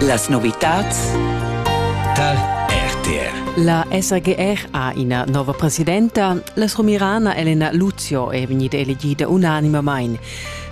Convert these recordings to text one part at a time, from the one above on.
Las novitads Tal RTR La SGR ha ina nova presidenta. La somirana Elena Luzio è vegnida elegida unanimamain.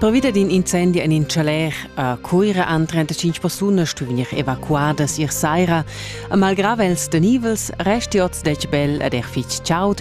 Pervida d'in incendi en in chaler a Cuira han 35 persunas stu vegnir evacuadas ier saira. A malgrà els tenivels resti oz detg bel ed er fitg chaud,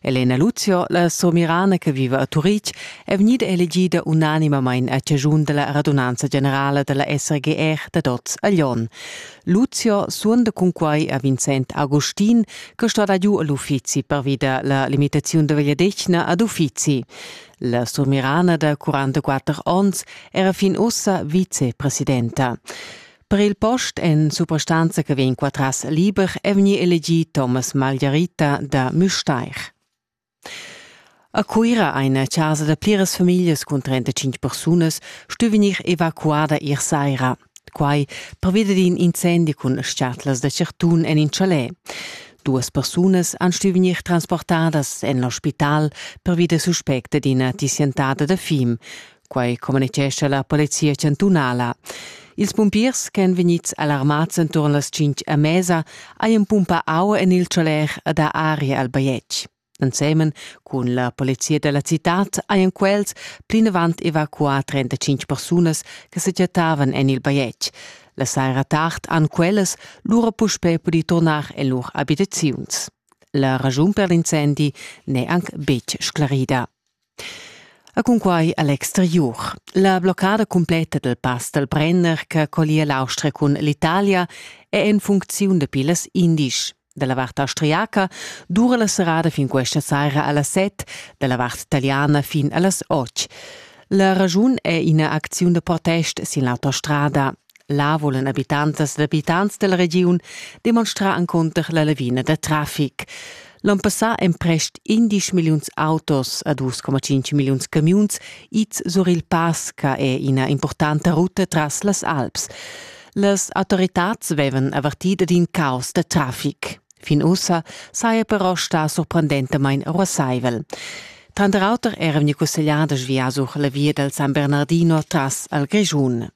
Elena Luzio, la somirana che viva a Turitg, è vegnida elegida unanimamain a chaschun della radunanza generala della SRGR dad oz a Lyon. Luzio suonda cunquai a Vincent Agustin, che sto dar giu all'uffizi pervida la limitazione de vegliadetgna ad uffizi. La somirana da 44 onns era fin ussa vicepresidenta. Per il post en suprastanza che vegn qua tras liber è vegnì elegì Thomas Margherita da Müstair. A Cuira eine casa da pliras famiglias cun 35 persunas stu vegnir evacuada ier saira. Quai pervida d'in incendi cun schatlas da certun en in chalet. Duas persunas han stu vegnir transportadas en l'ospital pervida suspecta d'ina tissientada da fim. Quai communitgescha la polizia chantunala. Ils pumpiers ch'èn vegnids alarmads enturn las tschintg a mesa hajan pumpà aua en il choler ed ha aria al bajetg. Ensemen cun la polizia da la citad hajan quels plinavant evacuà 35 persunas che sa chattavan en il bajetg. La saira tard han quellas lura puspè pudì turnar en lur abitaziuns. La raschun per l'incendi n'è anc betg sclarida. E cunquai a l'exteriur. La bloccada cumpletta dal pass dal Brenner che collia l'Austria cun l'Italia è en funcziun dapi las indisch. Dalla vart austriaca dura la serrada fin questa saira a las 7, dalla vart italiana fin a las 8. La ragiun è ina acziun da protest sin l'autostrada Là volan abitantas ed abitants dalla regiun demonstrar encunter la lavina da trafic. L'on passà èn prest 11 milliuns autos a 2,5 milliuns camiuns ids sur il pass che è ina importanta ruta tras las Alps. Las autoritads vevan avertì ad in caos da trafic. Fin ussa saja però stà sorprendentamain ruassaivel. Tranter auter era vegni cussegliadas via sur la via dal San Bernardino tras al Grischun.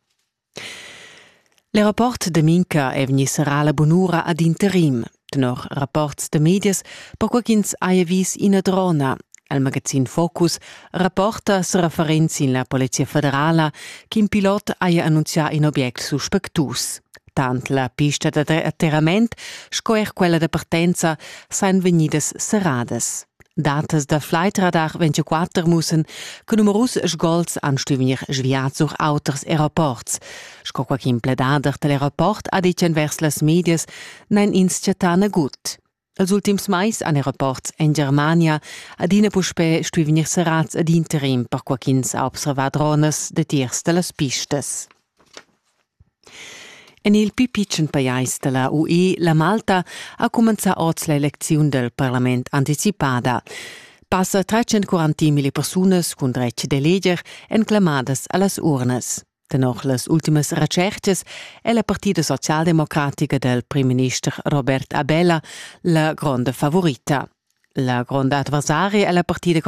Il rapport da Minca è vegni serrà la bunura ad interim. Tenor rapports da medias, perquai ch'ins haja vis ina drona, il magazin Focus rapporta sa referent sin la Polizia federala ch'in pilot haja annunzià in obiect suspectus. Tant la pista da atterrament sco er quella da partenza sajan vegnidas serradas. Datas da Fleitradar 24 mussen che numerus sgols han stuvenir sviat sur auters aeroports. Sco quai ch'in pledader dal aeroport ha ditg envers las medias, n'han ins chattà nagut. Els ultims mais han aeroports en Germania adina puspè stui vegnir serrads ad interim per quai ch'ins ha observà dronas datiers da las pistas. En il pli pitschen pajais da la UE, la Malta, ha cumenzà oz l'elecziun dal parlament anticipada. Passa 340 mila persunas cun dretg d'eleger èn clamadas a las urnas. Tenor las ultimas retschertgas è la partida socialdemocratica dal primminister Robert Abela la gronda favorita. La gronda adversaria è la partida